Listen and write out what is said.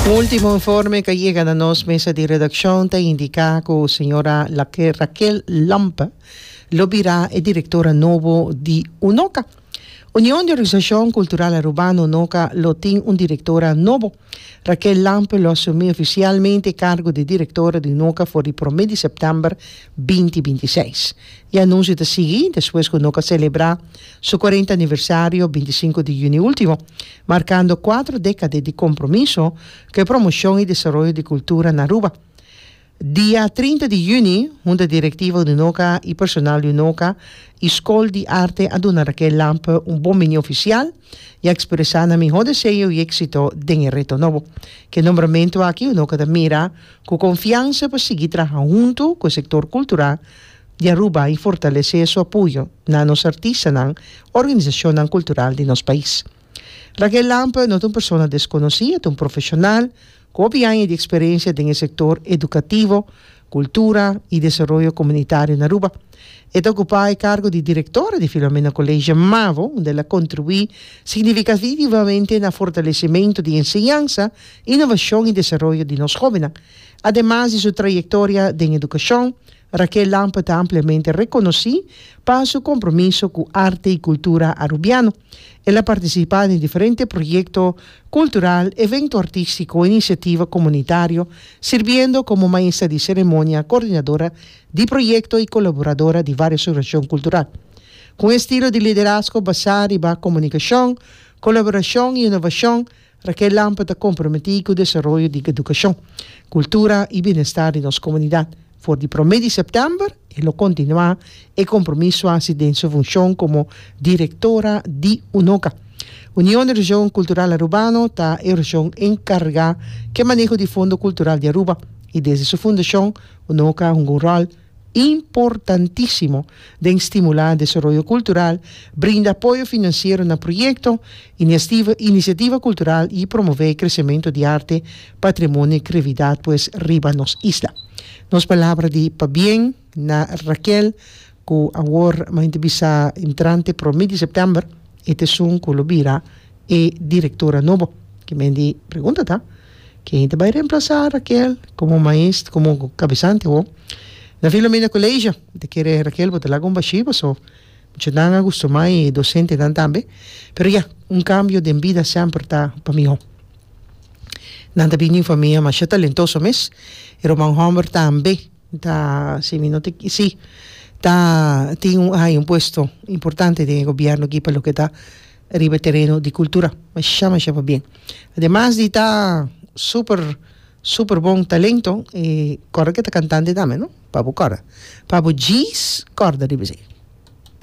Un ultimo informe cu a yega na nos mesa di redaccion ta indica cu señora Raquel Lampe lo bira e directora nobo di UNOCA. Union di Organisacion Cultural Arubano, UNOCA, lo tin un directora nobo. Raquel Lampe lo asumi oficialmente e cargo di directora di UNOCA for di prome di september binti binti seis. E anuncio ta sigui despues cu UNOCA celebra su cuarenta aniversario binti sinku di juni ultimo. markando kuater dekade di kompromiso ku e promoshon i desaroyo di kultura na Aruba. Dia trinta di yüni, hunta direktiva Ununoka i personal di Unoka i Skol di Arte a duna Raquel Lampe un bonbiní ofisial i a ekspresá nan mihó deseo i éksito den e reto nobo. Ku e nombramentu aki Unoka ta mira ku konfiansa pa sigui traha huntu ku e sektor kultural di Aruba y fortalece su apoyo na nos artistanan, organisacionnan cultural di nos pais. Raquel Lamp no ta un persona desconoci, e ta un profesional cu hopi aña di experiencia den e sector educativo, cultura y desaroyo comunitario na Aruba. E ta ocupa e cargo di directora di Filomena College Mavo, unda el a contribui significativamente na fortalecimento di enseñansa, innovacion y desaroyo di nos jovennan. Ademas di su trayectoria den educacion, Raquel Lampe ta ampliamente reconoci pa su compromiso cu arte y cultura Arubiano. El a participa den diferente proyecto cultural, evento artistico, iniciativa comunitario, sirbiendo como maestra di ceremonia, coordinadora di proyecto y colaboradora di varios organizacion cultural. Cu un estilo di liderazgo basa riba comunicacion, colaboracion y innovacion, Raquel Lampe ta comprometí cu desaroyo di educacion, cultura y bienestar di nos comunidad. For di prome di september e lo continua e compromiso haci den su funcion como Directora di UNOCA. Union di Region Cultural Arubano ta e region encarga cu e maneho di fondo cultural di Aruba y desde su fundacion UNOCA a hunga un rol importantísimo den stimulá desaroyo kultural, brinda apoyo finansiero na proyekto, iniastiva inisiativa kultural i promové kresementu di arte, patrimonio i kreatividat pues riba nos isla. Nos palabra di pabien na Raquel ku awor mañana bisa entrante promé di sèptèmber, e t'esun ku lo bira e direktora nobo. Kimendi pregunta ta. Ken ta bai remplasá Raquel komo maest komo kabesante awor? Na Filomena Koleisha ta kere Raquel bo ta laga un bashí paso muchanan a gustumá i dosentenan tambe pero ya un kambio den bida semper ta pa mihó. Nan ta bini for mia masha talentoso mes e ruman hòmber tambe ta si mi no te si ta tin un ai un puesto importante den e gobièrnu aki pa loke ta riba e tereno di kultura masha masha pa bien ademas di ta super super bon talento e kòrda ke ta kantante tambe no pa bo kòrda pa bo djis kòrda riba esei.